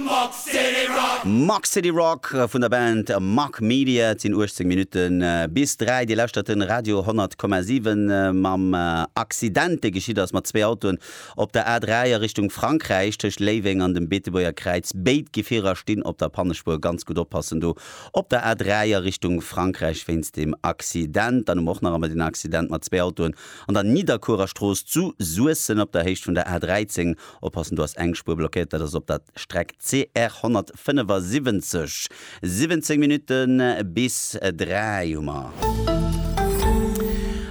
Muck City Rock. Muck City Rock vun der Band Muck Media. Et sinn 18 Minutte bis 3. Dir lauschtert de Radio 10,7. Mam Accident, dee geschitt ass mat zwee Autoen op der A3 a Richtung Frankräich, tëscht Léiweng an dem Beetebuerger Kräiz. Béid Gefierer stinn op der Pannespuer. Ganz gutt oppassen do op der A3 a Richtung Frankräich wéinst deem Accident. Dann hu mer och nach emol den Accident mat zwee Autoen an der Nidderkuerer Strooss zu Suessem op der Héicht vun der A13. Oppassen, do ass eng Spuer blockéiert, dat ass op der Streck CR 175. 17 Minutte bis 3 hu mer.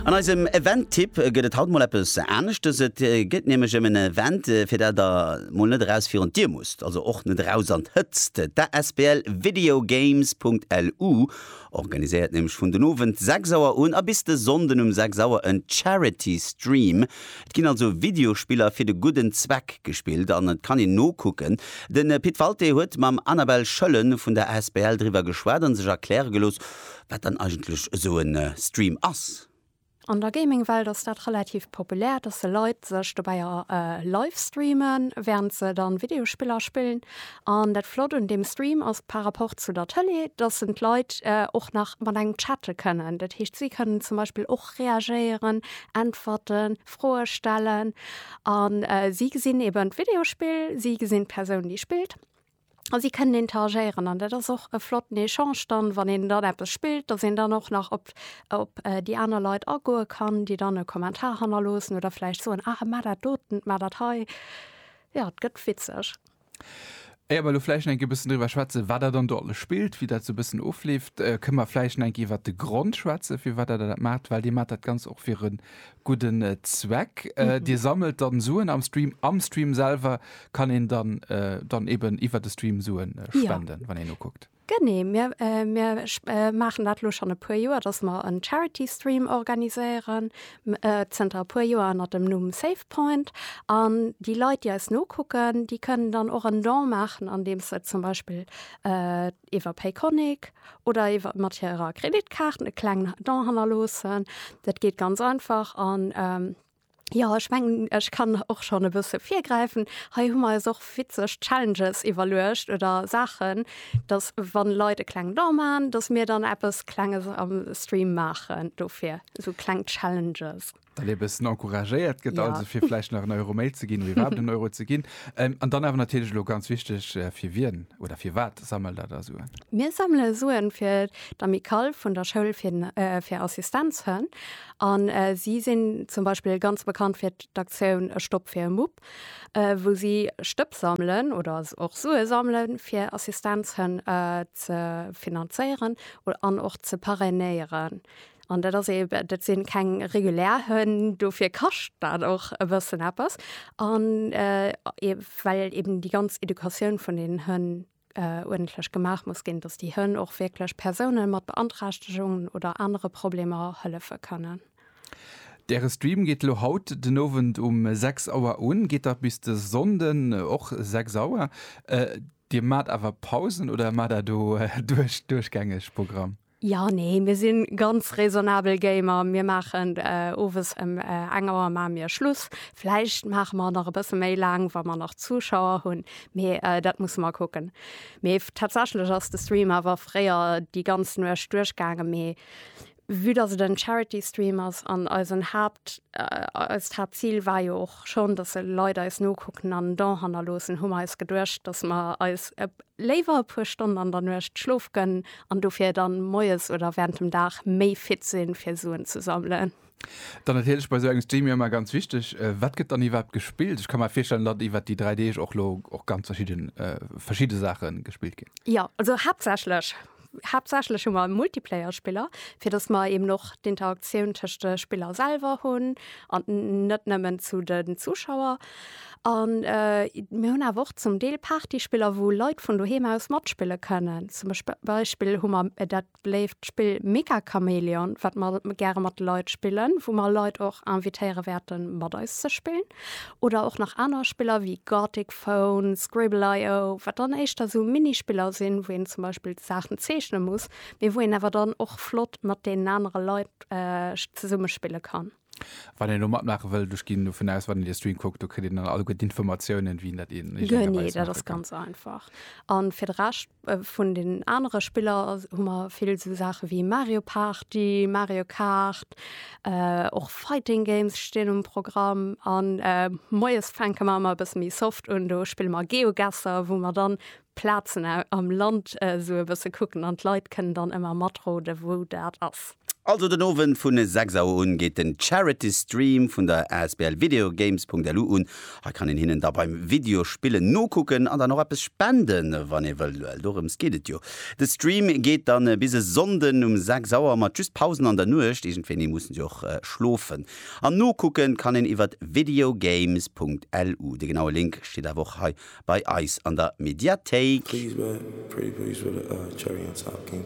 An eisem Event-Tipp gëtt et haut mol eppes aneschtes. Et geet nämlech ëm en Event, fir dat der mol net eraus virun d'Dier musst, also och net eraus an d'Hëtzt. D'asbl videogames.lu organiséiert nämlech vun den Owend 6 Auer un a bis de Sonnden um 6 Auer en Charity Stream. Et ginn also Videospiller fir de gudden Zweck gespillt an et kann een nokucken. De Pit Walté huet mam Anabelle Schöllen vun der asbl driwwer geschwat a sech erkläre gelooss, wat dann eigentlech esou e Stream ass. An der Gaming-Welt ass dat relativ populär, dass se Leit sech dobäi livestreamen, während se dann Videospiller spillen. An dat Flott un deem Stream ass par rapport zu der Tëlee, dass en d'Leit och nach mat engem chatte kënnen. Dat heescht, si kënnen zum Beispill och reagéieren, äntwerten, Froe stellen. A si gesinn eben d'Videospill, si gesinn d'Persoun, déi spillt. A si kënnen interagéieren an dat ass och e flotten Echange dann, wann een dann eppes spillt, datt een dann och nach op op déi aner Leit agoe kann, déi dann e Kommentar hannerloossen oder vläicht soen, ah mar dat doten, mar dat hei. Jo, et gëtt witzeg. Éier mer elo vläicht nach eng Kéier e bëssen driwwer schwätzen, wat Der dann do alles spillt, wéi dat esou e bëssen ofleeft, kënne mer vläicht nach eng Kéier iwwert de Grond schwätzen, firwat Der dat maacht, well Dir maacht dat Ganzt och fir e Gudden Zweck. Dir sammelt dann Suen am Stream. Am Stream selwer kann een dann dann eben iwwert de Stream Suen spenden, wann een ukuckt. Genee, mir mir maachen dat elo schonn e puer Joer, datt mer en Charity Stream organiséieren, zënter e puer Joer ënner dem Numm Save Point. An déi Leit, déi eis nokucken, déi kënnen dann och en Don maachen, andeems se zum Beispill iwwer Payconiq oder iwwer mat hirer Kreditkaart e klengen Don hannerloossen. Dat geet ganz einfach an ähm, ja ech mengen ech kann och schon e bësse virgräifen. Hei hu mer eis och witzeg Challenges iwwerluecht oder Saachen, datt wann Leit e klengen Don maachen, datt mir dann eppes Klenges am Stream maachen dofir, esou kleng Challenges. dat ee bëssen encouragéiert gëtt, ja. also fir vläicht nach en Euro méi ze ginn, wéi wat en Euro ze ginn. Ähm, an dann awer natierlech lo ganz wichteg, äh, fir wien oder fir wat sammelt dat da Suen? Mir sammele Suen fir d'Amicale vun der Schoul fir, äh, fir Assistenzhënn. An äh, si sinn zum Beispill ganz bekannt fir d'Aktioun E Stopp fir e Mupp, äh, wou si Stëpp sammeln oder och Sue sammeln, fir Assistenzhënn äh, ze finanzéieren an och ze parrainéieren. An dat ass eben, dat sinn keng regulär Hënn, dofir kascht dat och e bëssen eppes. An well eben déi ganz Educatioun vun deenen Hënn uerdentlech gemaach muss ginn, datt déi Hënn och wierklech Persoune mat Beanträchtegungen oder anere Problemer hëllefe kënnen. Däre Stream geet elo haut den Owend um 6 Auer un, geet da bis de Sonnden och 6 Auer. Dir maacht awer Pausen oder maacht Der do duerchgängeg Programm? Jo, nee, mir sinn ganz raisonnabel Gamer. Mir maachen owes em eng Auer maache mir Schluss. Vläicht maache mer nach e bësse méi laang, wa mer nach Zuschauer hunn, mee dat musse mer kucken. Mee tatsächlech ass de Stream awer fréier déi ganz Nuecht duerchgaangen, mee vue dass et en Charity Stream ass an eisen Haapt, eist Haaptzil war jo och schonn, dass Leit eis nokucken an en Don hannerloossen, hu mer eis geduecht, dass mer eis Léiwer e puer Stonn an der Nuecht Schlof gënn an dofir dann moies oder während dem Dag méi fit sinn fir Suen ze sammelen. Dann natierlech bei sou engem Stream jo emmer ganz wichteg, wat gëtt dann iwwerhaapt gespillt? Ech ka mer virstellen datt iwwert déi 3 Deeg och lo och ganz verschidden verschidde Saachen gespillt ginn. Jo, also haaptsächlech Haaptsächlech hu mer e Multiplayer-Spiller, fir dass mer eben och d'Interaktioun tëscht de Spiller selwer hunn an net nëmmen zu de Zuschauer. An mir hunn awer och zum Deel Partyspiller, wou Leit vun doheem aus matspille kënnen. Zum Beispill hu mer dat beléift Spill Mega Chameleon, wat mer gäre mat de Leit spillen, wou mer Leit och invitéiere wäerte mat eis ze spillen. Oder och nach aner Spiller wéi Gartic Phone, Scribble.io, wat dann éischter sou Minispiller sinn, wou een zum Beispill d'Saachen zeechne muss, mee wou een awer dann och flott mat deenen anere Leit zesumme spille kann. Wann een elo matmaache wëllt, ech ginn dovun aus, wann een de Stream kuckt, do kritt een dann alleguer d'Informatiounen, wéi een dat een. Genee, dat ass ganz einfach. A fir de Rescht. Vun den anere Spiller hu mer vill esou Saache wéi Mario Party, Mario Kart, och Fighting Games stinn um Programm. An moies fänke mer ëmmer e bësse méi soft un, do spille mer Geogesser, wou mer dann Plazen am Land esou e bësse kucken an d'Leit kënnen dann ëmmer matroden, wou dat ass. Also den Owend vun 6 Auer un geet den Charity Stream vun der asbl Videogames.lu un. Hei kann een hinnen da beim Videospillen nokucken an dann och eppes spenden wann ee wëllt, well dorëms geet et jo. De Stream geet dann bis e Sonnden um 6 Auer mat just Pausen an der Nuecht, iergendwéini mussen se jo och schlofen. An nokucken kann een iwwert videogames.lu. De genaue Link steet awer och hei bei eis an der Mediathéik. Please wait, pretty please wait, uh, cherry on top, king.